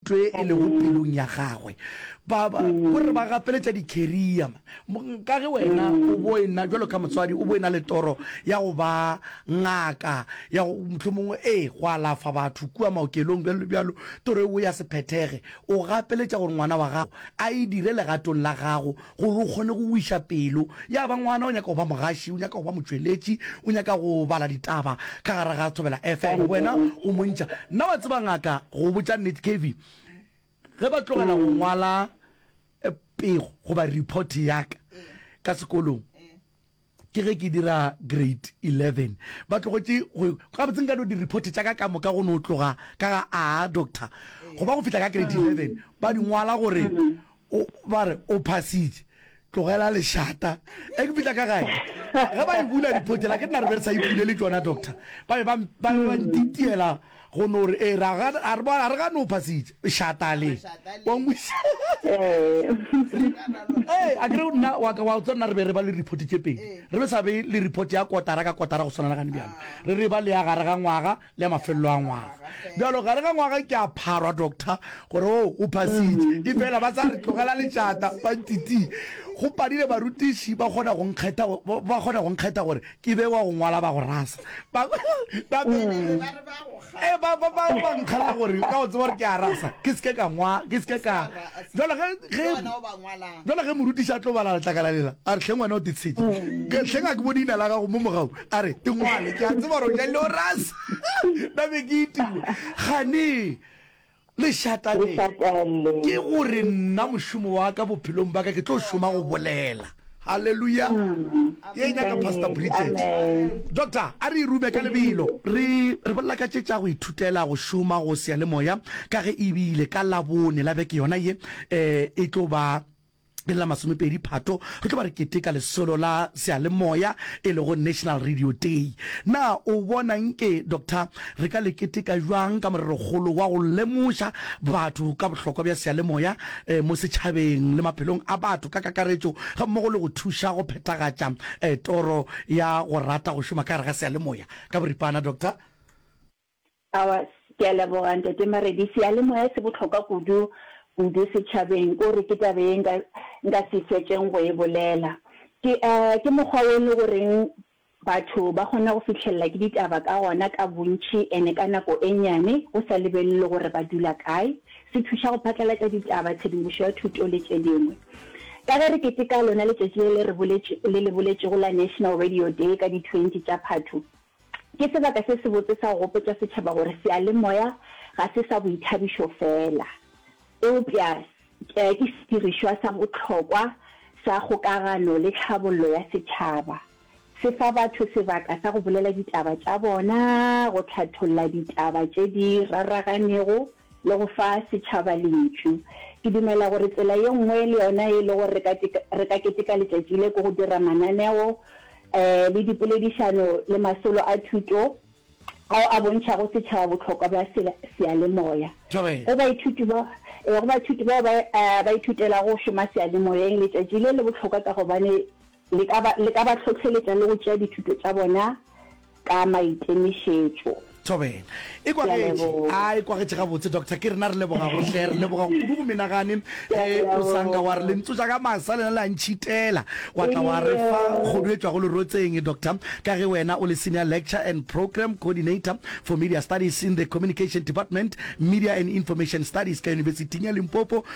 twe e lego pelong ya gagwe. Ba, ba, go re ba gapeletša dikheria. Ka ge wena o bo e na, jalo ka motswadi, o bo e na le toro ya go ba ngaka, ya go, mohlomongwe, ee, go alafa batho kua maokelong, bjalo le bjalo, toro eo ya se phethege. O gapeletša gore ngwana wa gago a e dire legatong la gago gore o kgone go wiša pelo ya ba ngwana o nyaka go ba mogaši o nyaka go ba motšweletši o nyaka go bala ditaba ka gare ga thobela fm wena o montšha nna wa tseba ngaka go botša nnete kevy ge ba tlogela go ngwala eh, pego goba report yaka ka sekolong Ke ge ke dira grade eleven, ba tlogetše go, gabotse nka no di-report tša ka ka moka go no tloga ka ga a doctor, go ba go fihla ka grade eleven ba di ngwala gore o, ba re o phasitše, tlogela lešata. Ge ke fihla ka gae, ge ba e bula report yela, ke nna re be re sa e bule le tšona doctor, ba be ba, ba be ba ntitiela. go no re ee ra ga a re bona re ga no phasitse shata le wa ngwisa ee a kere nna wa ka wa tsona re be re ba le report tse pedi re be sa be le report ya kotara ka kotara go swana le gane bjalo re re ba le ya gare ga ngwaga le ya mafelelo a ngwaga bjalo gare ga ngwaga ke a pharwa doctor gore o oh, o phasitse e fela ba sa re tlogela lešata ba ntiti go padile barutiši ba kgona go nkgetha ba kgona go nkgetha gore Ke be wa go ngwala ba go rasa. Ba ba be le ba re ba go kga. Eh ba ba ba ba nkgala gore ka o tseba gore ke a rasa. Ke se ke ka ngwa, ke se ke ka. Jalo ge ge Jalo ge morutiša tlo bala letlakala lela, a re hleng wena o titshedi. Ke hleng a ke bone ina la gago mo mogau. A re e ngwale. Ke a tseba gore o ja le o rasa. Ba be ke itiwa. Gane. Lešata le, ke go re nna mošomo wa ka bophelong bwa ka ke tlo šoma go bolela. Haleluya! Ye e nyaka Pastor Bridget. Doctor, a re e rume ka lebelo. Re, re bolela ka tše tša go ithutela go šoma go seyalemoya, ka ge e bile ka Labone la beke yona ye e, e tlo ba. ke la masomepedi phato re tlo ba re keteka lesolo la sealemoya e lego national radio day na o bona nke doctor re ka le keteka jwang ka morerokgolo wa go lemoša batho ka bohlokwa bja sealemoya eh, mo setšhabeng le maphelong a batho ka kakaretšo ga mmogo le go thuša go phethagatša eh, toro ya go rata go šoma ka gare ga sealemoya ka boripana doctor Aowa. Ke a leboga, Ntate Maredi. Seyalemoya se bohlokwa kudu, kudu setšhabeng. Ko re ke taba ye nka, nka se fetšeng go e bolela. Ke, ke mokgwa wo e le goreng batho ba kgona go fihlelela ke ditaba ka gona ka bontši ene ka nako e nnyane, go sa lebelelwe gore ba dula kae. Se thuša go phatlalatša ditaba, tshedimošo ya thuto le tše dingwe. Ka ge re keteka lona letšatši le le re boletše, le le boletšego la National Radio Day ka di twenty tša Phatho, Ke sebaka se sebotse sa go gopotša setšhaba gore seyalemoya ga se sa boithabišo feela, eupša ke sedirišwa sa bohlokwa sa kgokagano le tlhabollo ya setšhaba. Se fa batho sebaka sa go bolela ditaba tša bona, go hlatholla ditaba tše di raraganego, le go fa setšhaba lentšu. Ke dumela gore tsela ye nngwe le yona ye e lego gore re ka keteka letšatši le ke go dira mananeo le dipoledišano le masolo a thuto ao a bontšhago setšhaba bohlokwa bja seyalemoya. Go baithuti bao ba ithutelago go šoma seyalemoyeng, letšatši le le bohlokwa ka gobane Le ka ba, le ka ba hlohleletša le go tšea dithuto tša bona ka maikemišetšo. Thobela. E Ke a kwagetše. leboga. A, e kwagetše gabotse, Doctor. Ke rena re leboga go hle. Re leboga kudu go menagane. Ke a Ge o sa nka wa re leboga. lentso tša ka masa lena le a ntšhitela, wa tla wa re fa Ee. kgodu e tšwago lerotseng, Doctor, ka ge wena o le Senior Lecture and Programme Coordinator for Media Studies in the Communication Department, Media and Information Studies, ka Yunibesiting ya Limpopo.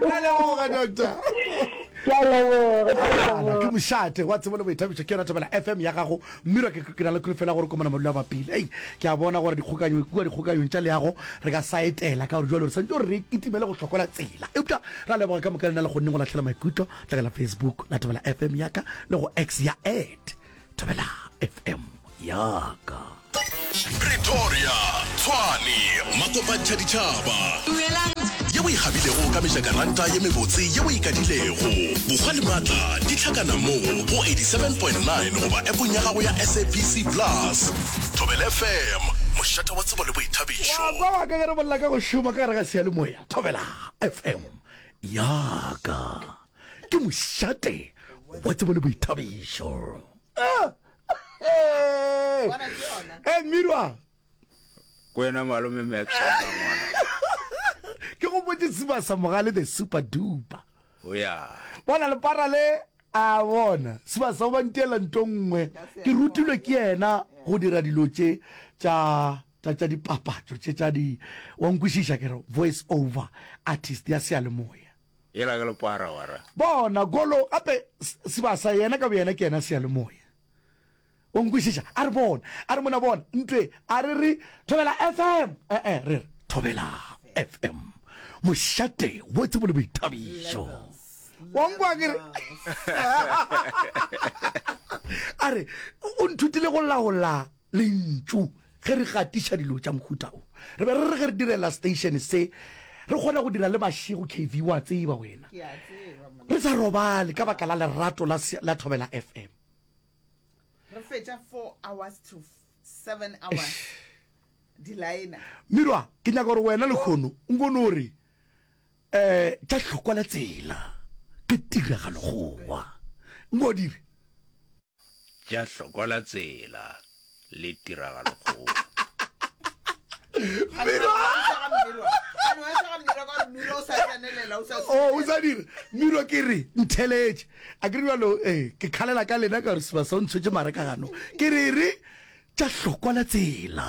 Ra leboga, doctor. Ke a leboga, ke a Ala, ke leboga. mošate wa tsebo le boithabišo ke yona thobela fm ya gago mmirwa ke ke na le kholofela gore komana madula ba pele ei ke a bona gore dikgokanyo kua dikgokanyong tša leago re ka sa etela ka gore jalo re santse gore re kitimele go hlokola tsela eupša ra leboga ka moka le na le kgonneng go lahlela maikutlo tla ka la facebook la thobela fm yaka le go x ya at thobela fm yaka pretoria tshwane makopantšha ditšhaba ye o ikgabilego ka mejakaranta ye mebotse ye o ikadilego bokgwa le maatla di tlhakana moo go 87.9 goba epong ya gago ya sabc plus thobel fm mošata wa tsebo le boithabišo wa kwa wa ka ge re bolela ka go šoma ka gare ga seyalemoya thobela fm yaka ke mošate wa tsebo le boithabišo e mirwa kwena malome max ke go botse siba sa mogale the super duper o ya bona le para le a bona siba sa ba ntela nto nngwe ke rutilwe ke yena go dira dilo tše tša tša tša dipapatso tše tša di wa nkwešiša ke re voice over artist ya seyalemoya Yela ka lepara wa ra. Bona, golo, gape sebasa, yena ka boyena ke yena seyalemoya. O nkwešiša? A re bona, a re mona bona, ntwe, a re re thobela FM, e-e, re re thobela FM, mošate wo tsebo le boithabišo. Wa nkwa ke re? A re, o nthutile go laola Lentšu. Ge re gatiša dilo tša mohuta wo, re be re re ge re direla seteišene se, re kgona go dira le mašego, KV, o a tseba wena, re sa robale ka baka la lerato la, la Thobela FM. Re fetša four hours to seven hours di laena. Mirwa, ke nyaka gore wena lekgono o nko no re, um, tša hlokwa le tsela, ke tiragalo gowa. Nko dire. tša hlokola tsela le tiragalokgolo. Oh, o sa dira miro ke re ntheletše a ke re bjalo eh, ke kgalela ka lena ka gore seba sa o ntshwetse mare ka gano ke re re tša hlokola tsela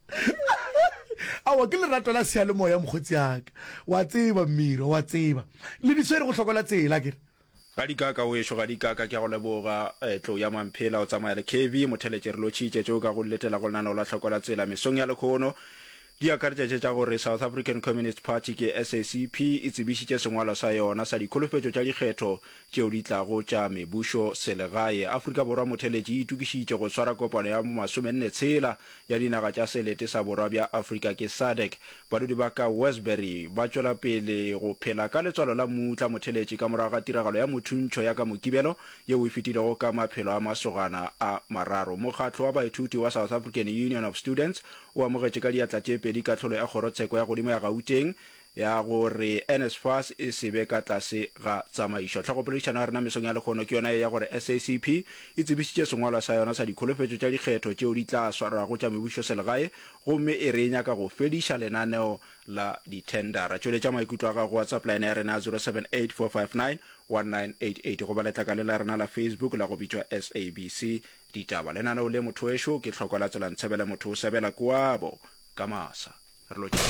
awa ke lerato la sealemoya mokgotsi aka wa tseba mmiro wa tseba le di swere go hlokola tsela kere Ga di kaka wešo ga di kaka ke a go leboga eh, tlo ya mamphela o tsamaya le kebi motheletše re lo tšhitše tšeo ka go letela go lenaneo la tlhokola tsela mesong ya lekhono di akaretša tše tša gore South African Communist Party ke SACP e tsebišitše sengwalo sa yona sa dikholofetšo tša dikgetho tšeo di tlago tša mebušo selegae. Afrika Borwa Motheletši e itokišitše go swara kopano ya masomenne tshela ya dinaga tša selete sa borwa bja Afrika ke SADC. Badudi ba ka Westbury ba tšwela pele go phela ka letswalo la mmutla motheletši ka morago ga tiragalo ya mothuntšho ya ka Mokibelo yeo e fetilego ka maphelo a masogana a mararo. Mokgatlo wa baithuti wa South African Union of Students o amogetše ka diatla tše pedi kahlolo ya kgorotsheko ya godimo ya Gauteng ya gore NSFAS e se be ka tlase ga tsamaišo. Tlhagopoledišano ya rena mesong ya lehono ke yona ye ya gore SACP e tsebišitše sengwalwa sa yona sa dikholofetšo tša dikgetho tšeo di tla swarwago tša mebušoselegae gomme e re e nyaka go fediša lenaneo la dithendara. Tšweletša maikutlo a gago go WhatsApp line ya rena ya 0784591988 goba letlakale la rena la Facebook la go bitšwa SABC Ditaba. Lenaneo le, Mothowešu ke hloko la Tselantsebele Motho o sebela Koabo Kamasa. Re lo.